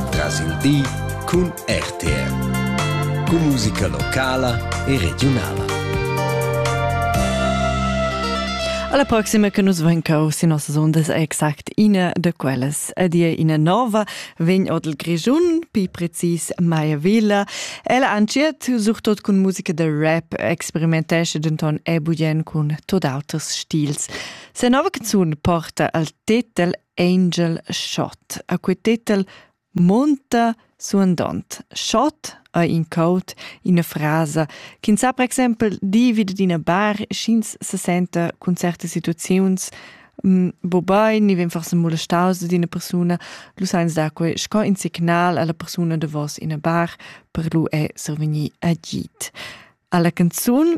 Tras il di cun RTR. Cun musica locala e regiunala. Alla prossima che nus ven cau sin nossas ondas è exact ina de quellas. A dir ina nova vegn odel Grischun, pi precis Maya Villa. Ella anciet surtot cun musica de rap experimentesce denton e bugen cun tot auters stils. Se nova canzun porta al titel Angel Schott. A quei tetel monta suandont: Schott ha in caut ina frasa ch'ins sa per exempel dir vi d'ina bar sch'ins se senta cun certe situaziuns mm, bo bein ni vegn forse molestaus ad ina persuna, lu sa ins dar quei sco in signal alla persuna davos ina bar per lu è survegnir agid. Alla canzun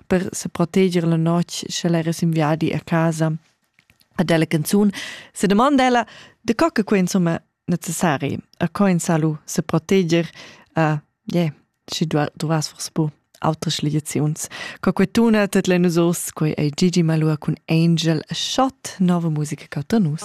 per seproteger la notg, sche l'era sin viadi a casa. Ad ella canzun se domanda ella de co che quei insomma necessari a co in salu se proteger a yeah, sche du, du vas forse bu autres liaziuns. Co quei tuna tet le nus os, quei ei Gigi Malua cun Angel a shot nova musica cauta nus.